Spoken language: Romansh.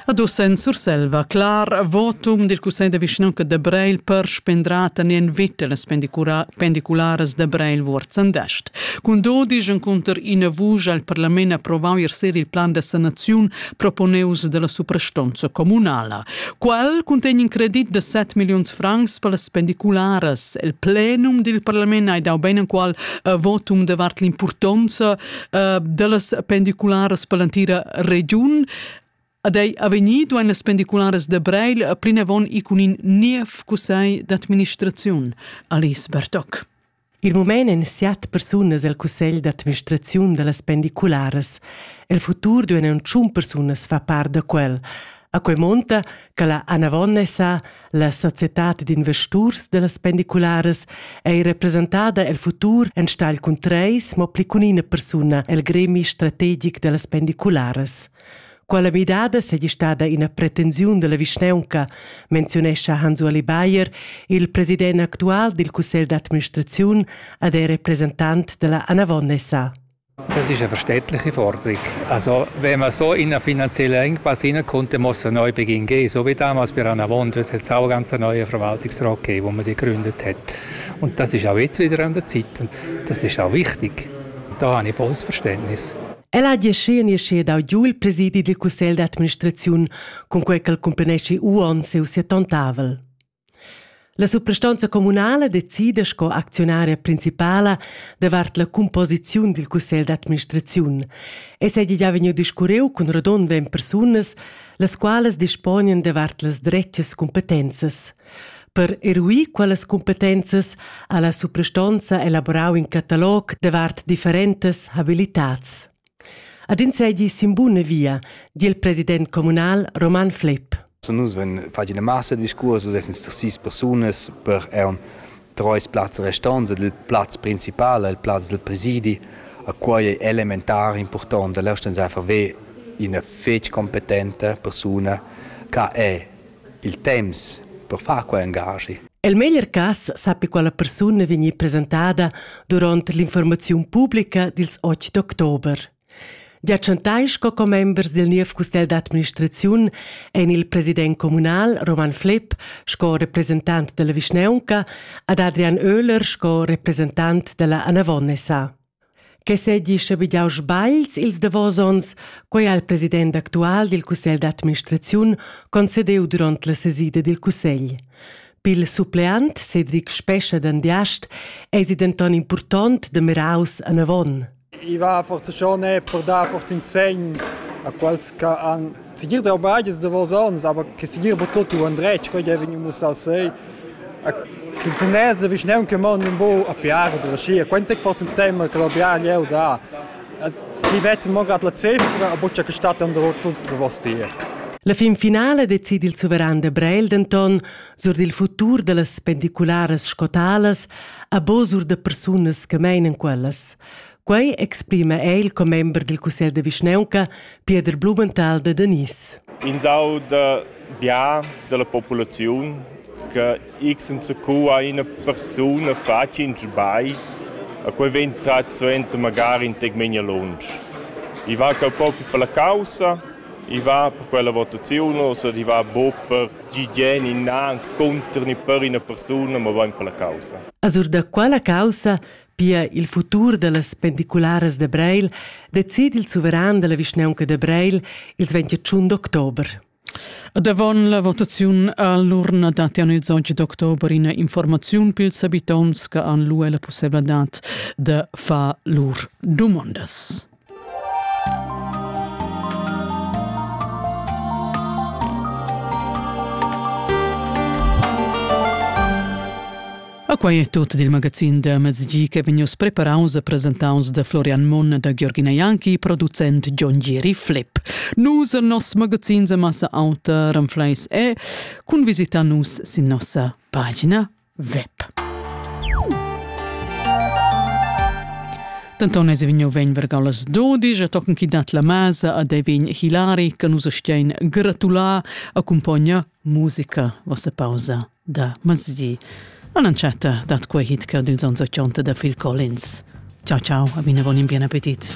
Ad uss en Surselva clar votum dil Cussegl de vischnaunca de Breil per spendrar tenien vita las pendicularas de Breil Vuorzendest. Cun dodisch encunter ina vusch al parlament approvau ier il plan de sanaziun proponeus dalla suprastonza comunala. Quel contegn in credit de 7 millions francs per las pendicularas. Il plenum dil parlament ha dau beinenqual votum davart l'impurtonza uh, dellas pendicularas per l'entira regiun. Ad ei avegnir duein las pendicularas de Breil plinavon i cun in niev cussegl d'administraziun, Alice Bertoc. Il moment en siat persunas el cussegl d'administraziun dallas pendicularas. El futur duein tschun persunas fa part da quel. A quei munta che la Anavonnesa, la societad d'investurs dellas pendicularas, ei representada el futur enstagl cun treis, mo pli cun ina persuna el gremi strategic dellas pendicularas. Quella midada seigi stada ina pretensiun della vischneunca, menzionescha Hans-Ueli Bayer, il president actual dil cussegl d'administraziun ed ei representant della Anavonnesa. Das ist eine verständliche Forderung. Also, wenn man so in einer finanziellen Engpass hinein kommt, dann muss ein Neubeginn geben. So wie damals bei Rannavon, dort hat es auch einen ganz neuen Verwaltungsrat gegeben, den man gegründet hat. Und das ist auch jetzt wieder an der Zeit und das ist auch wichtig. Da habe ich volles Verständnis. El ha giaschi e sche dau giu il presidi dil cussegl d'administraziun, cun quei ch'el cumpeneschi uonn siu siatontavel. La suprastonza communala decida sco acziunaria principala davart la cumposiziun dil cussegl d'administraziun. Ei seigi gia vegniu discurreu cun rodond ventg persunas, las qualas disponien davart las dretgas cumpetenzas. Per eruir quellas cumpetenzas ha la suprastonza elaborau in catalog davart differentas habilitads. Ad ins seigi sin buna via, di il president communal Roman Flepp. Nus vein fatg ina massa discurs, essan sis sis persunas per eun treis plazs restants ed il plaz principal, il plaz del presidi, a quei è elementar important da leusten einfach ve ina fetg competente persona che è Il temps per far quei engaschi. El meglier cass sappi quella persuna vegnir presentada duront l'informaziun publica dils 8 d'october. Gia chantai sco commembers dil niev custel d'administraziun ein il president communal Roman Flepp sco representant dalla vischnaunca ad Adrian Oehler sco representant dalla Anavonnesa. Che seigi schabegiaus sbagls ils davos onns, quei ha il president actual dil cussegl d'administraziun concedeu duront la sesida dil cussegl. Pil suppleant Cedric Spescha d'Andiast eisi denton impurtont da miraus anavon. I va forza schon per dar forza in segn a quels che han Segir trabalg es davos ons, aber che segir bo tot u andretg, quei ei vegniu mussau sei. Che teness da vischnaun che mond un bu a piar da scia, quant tec forse un tema che lo piar jeu da. Ti vet mo grad la cifra, a buccia che stat under tuts davos tier. La fin finala decidi il suveran de Breil denton sur dil futur dallas pendicularas scotalas a bo sur de persunas che meinen quellas. Quei exprima el commember dil cussegl de vischnaunca, Pieder Blumenthal de Danis. In sau de bia della populaziun che x enzacu ha ina persuna fatg in sbagl, a quei vegn trat suenter magari in tec menia lunsch. I va cau propi per la caussa, i va per quella votazione, oder i va bo per gigien innan contr ni per ina persuna, ma va per la caussa. Azur da quella caussa Pia il futur dallas pendicularas da Breil decidi il suveran dalla vischnaunca da Breil ils 21 d'october. Davon la votaziun all'urna dattian ils 11 d'october ina informaziun pils habitonts che han lu la pussebladad da far lur dumondas. A quai è tut dil magazin da mezgi che vegnius preparaus e presentaus da Florian Monn da Giorgina Janki, producent John Gieri Flip. Nus e nos magazin de massa auta Renfleis e cun visita nus sin nossa pagina web. Denton es vegniu vegn vergau las dodisch a tochen chi dat la masa a Devin Hilari che nus stein gratular accompagna musica vossa pausa da masdi. Annunziata dat quei hit che dils ans 80 da Phil Collins. Ciao ciao, a bine buon in bien appetit.